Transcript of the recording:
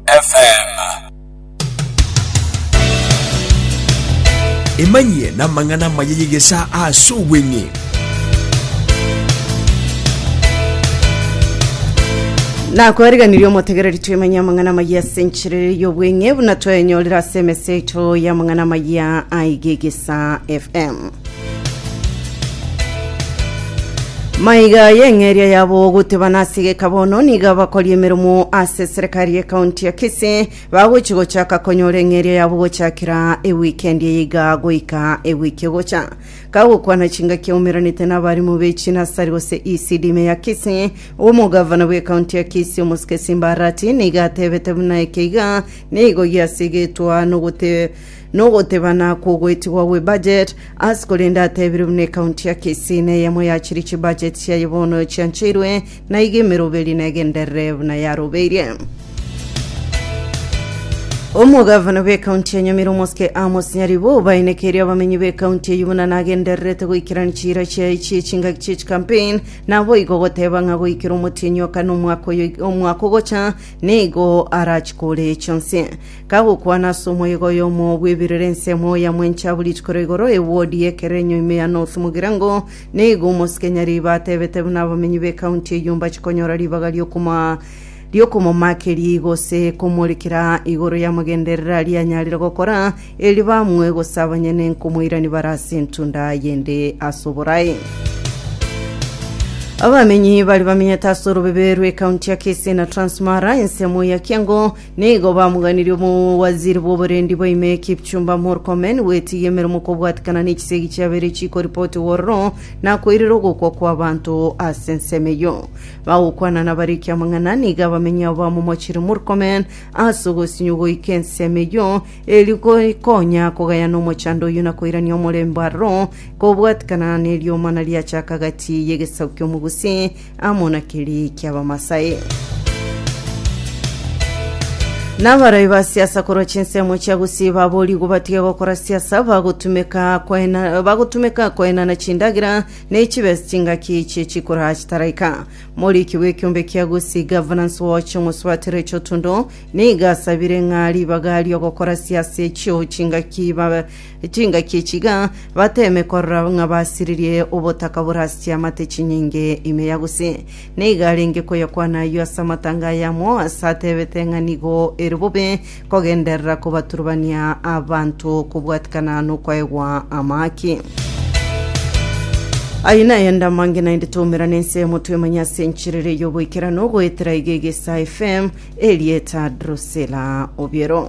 FM. Emanyie namang'ana amaya y'egesa ase obweng'e. nakwariganirie omotegereri twemenye amang'ana amaya ase enchirere y'obweng'e buna twaenyorire ase emesa yaito y'amang'ana amaya aigegesa fm Maiga y'eng'eria yabo goteba nasigeka bono nigo abakori emeromo ase serikari ya kaunti ya Kisii bagochi gochaka konyora eng'eria yabo gochakera ewikendi eye iga goika ewiki egocha kagokwana chingaki aumeranete n'abarimu b'echinasari gose ECD ime ya Kisii omogavana bw'ekaunti ya Kisii omosike Simba Arati nigo atebete buna eke iga nigo giasigetwa nogote Nogotebana kwogoetigwa gwe budget as korende atebire buna ecounty ya Kisii neyemo yachire chibudget chiaye bono chiancheirwe na iga emeroberi negenderere buna yarobeirie. Omogavana bw'ecounty ya Nyamira omosike Amos Nyaribo obainekeirie abamenyi b'ecounty eyio buna nagendererete goikerania chiira chiaye chie chingaki chie chicampaign naboigo goteba ng'a goikera omotienyi oka nomwaka oyo omwaka ogocha nigo arachikore chionsi. Kagokwana ase omoyega oyomo bw'ebirori ensemo ya mwenche abwo rituko ria igoro ewodi y'ekerenyo ime ya North Mugirango, nigo omosike Nyariiba atebete buna abamenyi b'ekaunti eyio mbachikonyora ribaga ri'okoma ri'okomomakeria igose komorekera igoro y'amagenderera aria anyarire gokora, erio bamue gose abanyene nkomoirani bare ase entunda y'ende ase oborae. Abamenyi bari bamenyete ase orobebe rw'ekaunti ya Kisii na Transmara, ensemo ya Kiango, Nigo bamoganirie omowaziri bw'oborendi bwa ime Kipchumba Murkomen gwetigia emeremo kobwatekana ne chisegi chiabeire chikoripotwa ororo na koirera ogokwa kw'abanto ase ensemo eyio. Bagokwana nabariki amang'ana nigo abamenyi abo bamomochire Murkomen ase ogosinywa goika ensemo eyio erio gokonya kogayana omochando oyio na koirania omorembe aroro kobwatekana neriomana riacha aka gati y'egesaku ki'omogusi amo na kerii ki'Abamasai. Nabaroi ba siasa korwa chinsemo chia Gusii baboorigwe batige gokora siasa bagotumeka koena bagotumeka koenana chindagera ne chibesa chingaki chie chikura chitaraika. Moriki bw'ekiombe kia Gusii Governance Watch Omosubati Rachel Otundo nigo asabire ng'a ribaga ri'ogokora siasa echio chingaki ba- Chingaki echi iga bateeme korora ng'a basiririe obotaka bore ase chiamate chinyinge ime ya gose. Na iga arenge koyokwana ayio ase amatanga aye amo, ase ateebete ng'a nigo ere bobe kogenderera kobaturubania abanto kobwatikana nokwaegwa amaaki. Ayio naye ande amange naende twaumerane ensemo twemanye ase enchiriri y'oboikeranu goetera iga egesa FM, Elieta Drusilla Obiero.